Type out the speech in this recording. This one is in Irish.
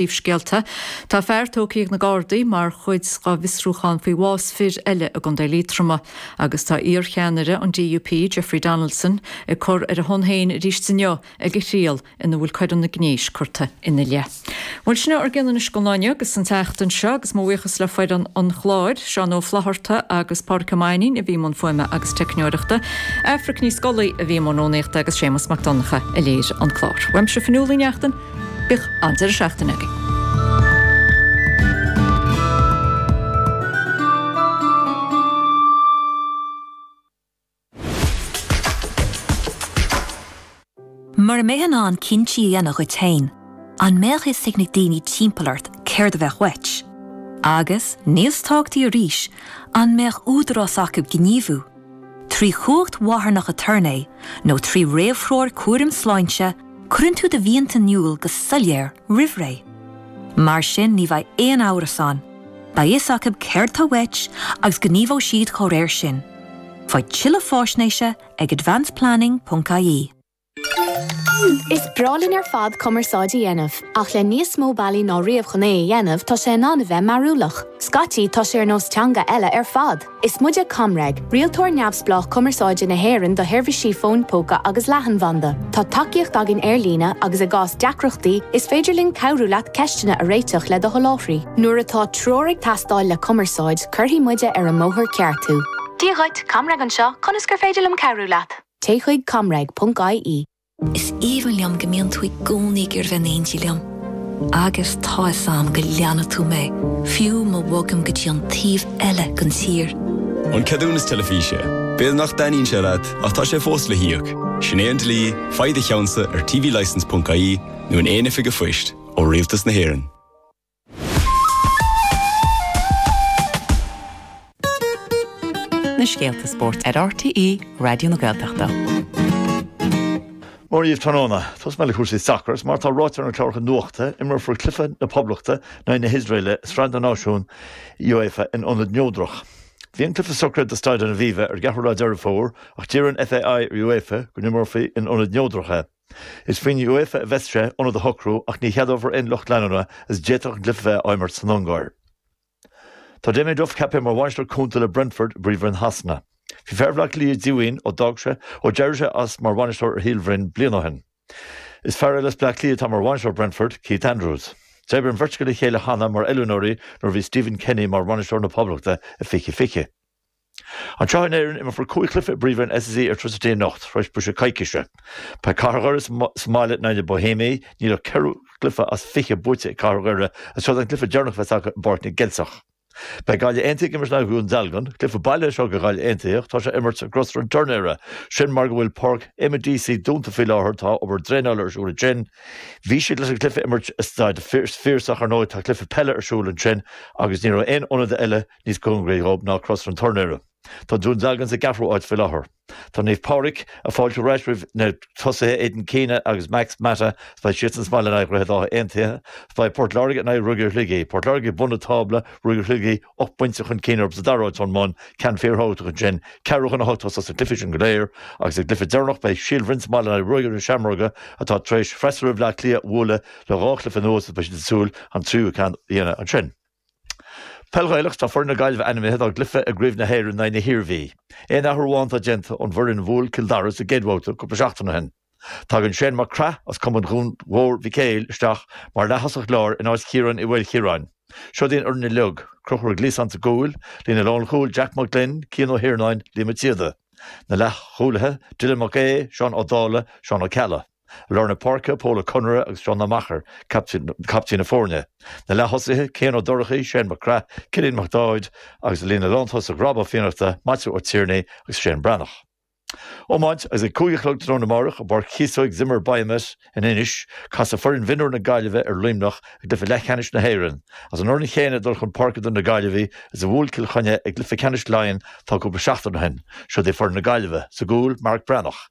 Príomhscéalta, tá fear tógtha ag na Gardaí mar chuid dá bhfiosrúchán faoi bhás fir eile i gContae Liatroma agus tá iarcheannaire an DUP, Jeffrey Donaldson, ag cur ar a shon féin arís inniu ag a thriail ina bhfuil coireanna gnéis curtha ina leith. Bhuel, sin é ár gcuid anois don lá inniu agus don tseachtain seo agus mo bhuíochas le foireann an chláir, Seán Ó Flaithearta agus Pádraig Ó Mainín a bhí i mbun fuaime agus teicneoireachta, Aifric Ní Scolaí a bhí i mbun rúnaíochta agus Séamus Mac Donncha a léirigh an clár. Uaimse Fionnuala Ní Neachtain. Bíodh an-deireadh seachtaine againn. Mura mbeifeá in ann cinntí a dhéanamh duit féin, an mbeadh fhios ag na daoine timpeall ort céard a bheadh uait? Agus, níos tábhachtaí arís, an mbeadh údarás acu gníomhú? Trí chumhacht mharthanach aturnae nó trí réamhthreoir chúraim sláinte, cuireann tú do mhianta in iúl go soiléir roimh ré. Mar sin ní bheidh aon amhras ann, beidh fhios acu céard tá uait agus gníomhóidh siad dá réir sin. Faigh tuilleadh fáisnéise ag advanceplanning.ie. Is breá linn ar fad cumarsáid a dhéanamh, ach le níos mó bealaí ná riamh chun é a dhéanamh, tá sé in ann a bheith mearúlach. Scaití, tá sé ar nós teanga eile ar fad. Is muide ComReg, rialtóir neamhspleách cumarsáide na hÉireann do sheirbhísí fóin póca agus leathanbhanda. Tá tacaíocht againn ar líne agus i gcás deacrachtaí, is féidir linn cabhrú leat ceisteanna a réiteach le do sholáthraí. Nuair atá treoir ag teastáil le cumarsáid, cuirfidh muide ar an mbóthar ceart thú. Dia dhuit, ComReg anseo, conas gur féidir liom cabhrú leat? Téigh chuig ComReg ponc IE. Is aoibhinn liom go mbíonn tú i gcónaí ag iarraidh bheith in éindí liom. Agus tá fhios a'm go leanfaidh tú mé, fiú ma bhogaim go dtí an taobh eile den tír. An ceadúnas teilifíse. B'fhéidir nach dtaitníonn sé leat, ach tá sé fós le híoc. Sin é an dlí, faigh do cheannsa ar tvlicense ponc IE nó in aon oifig a' phoist, ó Rialtas na hÉireann. na scéalta spóirt ar RTÉ Raidió na Gaeltachta. Mora dhaoibh tráthnóna, tosóidh mé le cúrsaí sacair agus mar atá ráite ar na cláracha nuachta, imreofar Cluiche na Poblachta in aghaidh na hIosraeile i Sraith na Náisiún UEFA in Ionad Neodrach. Bhí an cluiche socraithe do Staid an Aviva ar an gceathrú lá Deireadh Fómhair ach d'iarr an FAI ar UEFA go n-imreofaí in Ionad Neodrach é. Is faoin UEFA a bheas sé ionad a shocrú ach ní cheadófar aon lucht leanúna is d'fhéadfadh an cluiche a bheith á imirt san Ungáir. Tá Damien Duff ceaptha mar bhainisteoir cúnta le Brentford i bPríomhroinn Shasana. Bhí fear Bhleá Cliath díomhaoin ó d'fhág sé ó d'éirigh sé as mar bhainisteoir ar Shíol Bhroin bliain ó shin. Is fear eile as Bleá Cliath atá mar bhainisteoir Brentford, Keith Andrews. D'oibrigh an bheirt acu le chéile cheana mar oiliúnóirí nuair a bhí Stephen Kenny mar bhainisteoir na Poblachta i fiche fiche. Anseo in Éirinn, imreofar cúig chluiche i bPríomhroinn SSE Airtricity anocht, tar éis briseadh coicíse. Beidh Cathair Dhoire sa mbaile in aghaidh na Bóihéamaigh, níl ach ceithre chluiche as fiche buaite ag Cathair Dhoire agus seo an cluiche deireanach a bheas acu i bPáirc na gCeilteach. Beidh Gaillimh Aontaithe ag imirt in aghaidh Dhún Dealgan. Cluiche baile é seo do Ghaillimh Aontaithe ach tá sé á imirt i gCrosaire an Tuirnéara. Sin mar go bhfuil Páirc Eamonn Deacy dúnta faoi láthair, tá obair draenála ar siúl ansin. Bhí siad leis an cluiche a imirt i Staid an Phiarsaigh. Ar ndóigh, tá cluiche peile ar siúl ansin agus ní raibh aon ionad eile Níos cóngaraí dhóibh ná Crosaire an Tuirnéara tá Dún Dealgan sa gceathrú áit faoi láthair. Tá Naomh Pádraig ag fáiltiú ar ais roimh na tosaithe Aidan Keena agus Max Mata is beidh siadsan sa mbaile in aghaidh Dhroichead Átha Aontaithe is beidh Port Láirge in aghaidh Ruagairí Shligigh. Port Láirge ag bun an tábla, Ruagairí Shligigh ocht bpointe chun cinn orthu sa dara áit ón mbun, ceann fíorthábhachtach ansin. Ceathrú chun a hocht a thosós na cluichí sin go léir agus sa gcluiche deireanach beidh Síol Bhroin sa mbaile in aghaidh Ruagairí na Seamróige atá tar éis freasúra Bhleá Cliath a bhualadh le dhá chluiche anuas agus beidh siad ag súil an tríú ceann a dhéanamh ansin. Peil Ghaelach Tá foireann na Gaillimhe ainmithe dá gcluiche i gCraobh na hÉireann in aghaidh na hIarmhí. Aon athrú amháin atá déanta ón bhfoireann a bhuail Cill Dara sa gcéad bhabhta cúpla seachtain ó shin. Tagann Shane Mac Craith as cumann Dhún Mhór Mhic Éil isteach mar leaththosach láir in áit Chiaráin Uí Mhaolchiaráin. Seod í an fhoireann uilig, Conchúr Gliasáin sa gcúl, líne lánchúil Jack Mac Gloinn, Cian Ó hIarnáin, Liam Mac Síoda. Na leathchúlaithe, Dylan Mac Aoidh, Seán Ó Dálaigh, Seán Ó Ceallaigh. Lár na páirce, Pól Ó Conaire agus Seán Ó Meachair caiptín na foirne. Na leath-thosaithe, Cian Ó Dorchaí, Shane Mac Craith, Cillian Mac Dáid agus i líne na lántosach Rob Ó Fiannachta, Maitiú Ó Tiarnaigh agus Shane Breathnach. Iomáint, Is ag cúig a chlog tráthnóna amárach i bPáirc Chíosóig Zimmer Biomet in Inis, casfaidh foireann mhionúir na Gaillimhe ar Luimneach i gcluiche leathcheannais na hÉireann. Is an fhoireann chéanna ag dul chun páirce do na Gaillimhigh is a bhuail Cill Chainnigh i gcluiche ceannais Laighean tá cúpla seachtain ó shin. Siod é foireann na Gaillimhe. Sa gcúl, Marek Breathnach.